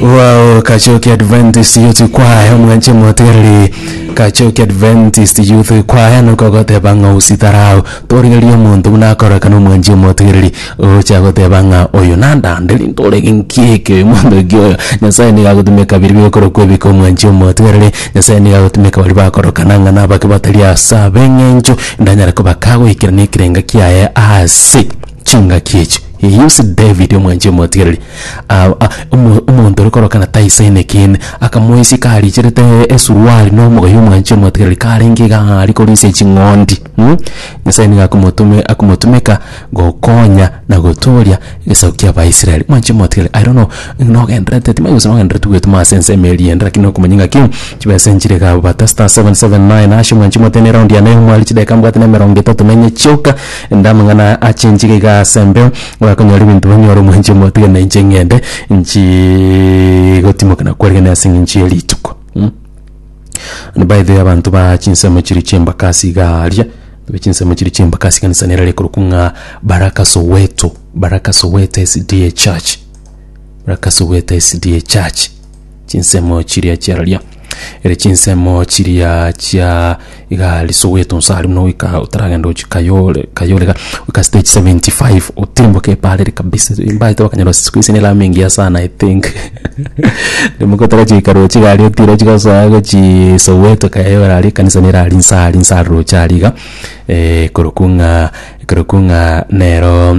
Wow, Kachoki Adventist Youth Choir omwanche motigareri Kachoki Adventist Youth Choir nuko goteba ng'a usitarau torigeria omonto buna akorekana omwanchi omotigareri ocha goteba ng'a oyo nandanderi ntorege nkieke oyo monto ki oyo Nyasaye niga agotumeka biri bigokora kwebeka omwanchi omotigareri Nyasaye niga agotumeka baria bakorokana ng'a nabake batari ase ab'eng'encho ndanyare kobaka goikerania ekerengo kiaye ase chingaki echi. He used David omwanchia omotigereri ah, ah, omo- omonto ore korokana taise enekiine akamoisia karicherete esuruari na omogoyo omwanchia omotigereri karenge iga ng'a ari korisia ching'ondi mm? nyasae nigo akomotume akomotumeka gokonya na gotooria egesaku kia abaisraeli mwanchia omotigereri i don't know nogenderete timanya gose nogenderete gwetoma ase ensemo eria ende lakini okomanya ng'a ki chibesa enchire iga bata star 779 hash mwanchia omoteeme eraundi yane yomwari chideka mbwate na emerongo etato na enye chioka Inde amang'ana achenche iga iga ase mbe, ogakonyora ebinto banyore omwenche omoyo, tiga na inche ng'ende nchie gotimoka na kwarigania ase eng'encho ye rituko. Mh By the way abanto ba chinsemo chiria chi'embakasi iga aria, abanto ba chinsemo chiria chi'embakasi ekanisa nero ekorokwa ng'a Baraka Soweto, Baraka Soweto SDA Church, Baraka Soweto SDA Church. chinsemo chiria chi'araria, ere chinsemo chiria chia iga riso gwetunsa aria buna goika otaragenda gochi Kayole, Kayole iga, goika stage 75 otirimboke epaarire kabisa, mbaete bakanyora siku hizi ni lami imeingia sana I think rimoka otagochia goika roche iga aria otira ochi gosoa gochii Soweto Kayole aria ekanisa nere aria inse aria inse aria roche aria iga korokwo ng'a korokwo ng'a neroo.